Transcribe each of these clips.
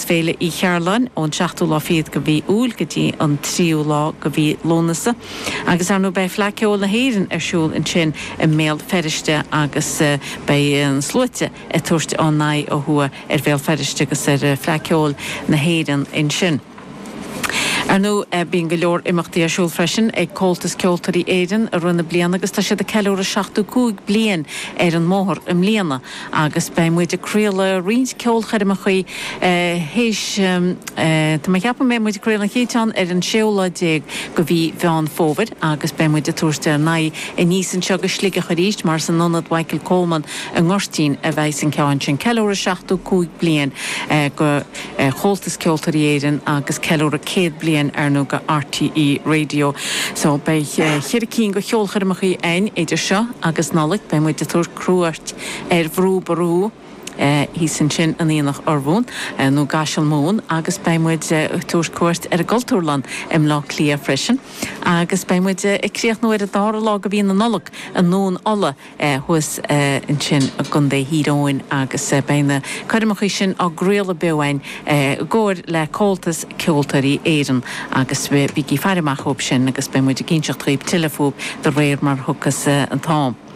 Féile Uí Chearláin, ón seachtú lá fichead go mhí Iúil go dtí an tríú lá go mhí Lúnasa. Agus, ar ndóigh, beidh Fleadh Ceoil na hÉireann ar siúl ansin i mBéal Feirste agus beidh na sluaite ag tabhairt a n-aghaidh ó thuaidh ar Bhéal Feirste agus ar Fleadh Ceoil na hÉireann ansin. Ar ndóigh, bíonn go leor imeachtaí ar siúl freisin ag Comhaltas Ceoltóirí Éireann i rith na bliana agus tá siad ag ceiliúradh 75 bliain ar an mbóthar i mbliana. Agus beidh muid ag craoladh roinnt ceolchoirmeacha théis Tá mé ag ceapadh go mbeidh muid ag craoladh an chéad cheann ar an séú lá déag go mhí Mheán Fómhair agus beidh muid ag tabhairt ár n-aghaidh aníos anseo go Sligeach arís mar is in Ionad Mhichael Coleman i nGoirtín a bheas an ceann sin. Ceiliúradh seachtó cúig bliain go Chomhaltas Ceoltóirí Éireann agus ceiliúradh céad bliain ar ndóigh go RTÉ Radio. So beidh cheithre cinn go cheolchoirmeacha ann idir seo agus Nollaig. Beidh muid ag tabhairt. cuairt ar Bhrú Ború, thíos ansin in Aonach Urmhumhan nó gCaiseal Mumhan agus beidh muid ag tabhairt cuairt ar an gCultúrlann i mBleá Cliath freisin agus beidh muid ag críochnú ar an dara lá de mhí na Nollag i nDún Uladh thuas ansin i gContae Thír Eoghain agus beidh na coirmeacha sin á gcraoladh beo againn i gcomhar le Comhaltas Ceoltóirí Éireann agus bígí ag faire amach dhóibh sin agus beidh muid ag inseacht dhaoibh tuilleadh fúthu de réir mar a thiocfas an t-am.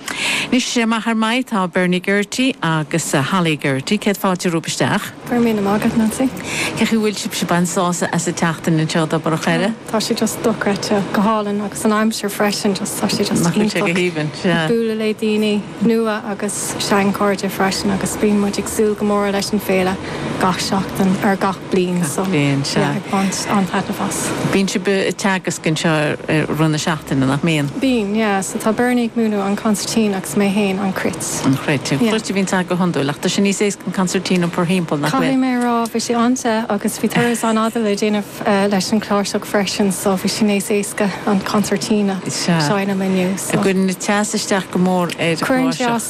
Anois, maith ar maith, tá Bernie Geraghty agus Holly Geraghty. Céad fáilte romhaibh isteach. Go raibh míle maith agat, Nancy. Cén chaoi bhfuil sibhse? Bain sásamh as an tseachtain anseo, i dTobar an Choire. Oh, tá sé just dochreidte. Go hálainn. Agus an aimsir freisin, just, tá sé just iontach. Nach bhfuil sé go haoibhinn? Sea. Ag bualadh le daoine nua agus sean-chairde freisin agus bíonn muid ag súil go mór leis an Féile gach seachtain, er, gach. bliain sa bhliain seo. Bíonn sibh ag teagasc anseo i rith na seachtaine, nach mbíonn? Bíonn, yeah. So tá Bernie ag múineadh an concertina agus mé fhéin an cruit. An chruit. An chruit a bhíonns agat go hiondúil ach tá sé níos éasca an concertina a iompar thimpeall, nach bhfuil? Caithfidh mé a rá, bhí sé an-te agus bhí turas an-fhada le déanamh leis an chláirseach freisin so bhí sé níos éasca an concertina a sheinm inniu. Sea. Cuireann an teas isteach go mór ar chláirseach.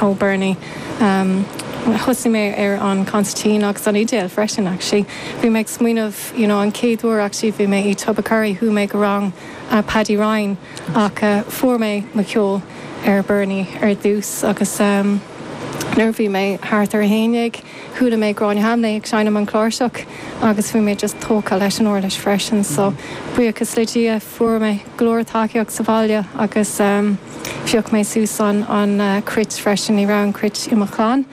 Oh Bernie, em, thosaigh mé ar an concertina agus an fhidil freisin actually. Bhí mé ag smaoineamh, you know, an chéad uair actually bhí mé i Tubbercurry, chuaigh mé go rang Paddy Ryan ach eh fuair mé mo cheol ó Bernie ar dtús agus em nuair a bhí mé thart ar a haon dhéag, Chuala mé Gráinne Hambly ag seinm an chláirseach agus bhí mé just tógtha leis an uirlis freisin so buíochas le Dia fuair mé go leor tacaíocht sa bhaile agus phioc mé suas an an cruit freisin, ní raibh an cruit i mo chlann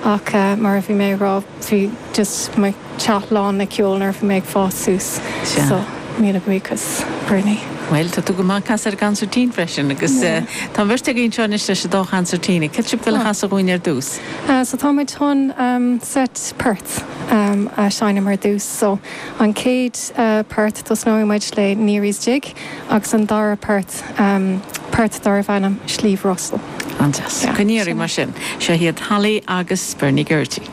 ach mar a bhí mé ag rá bhí just mo theach lán le ceol nuair a bhí mé ag fás suas so míle buíochas Bernie. Bhuel tá tú go maith ag casadh ar an gcansairtín freisin agus tá an bheirt agaibh anseo anois leis an dá chansairtín, céard atá sibh ag goil a chasadh dhúinn ar dtús? So tá muid chun seit port a sheinm ar dtús. So an chéad port, tosnóidh muid le Neary's Jig agus an dara port, port darbh ainm Sliabh Russell. An-deas. Go n-éirí libh mar sin. Seo iad Holly agus Bernie Geraghty.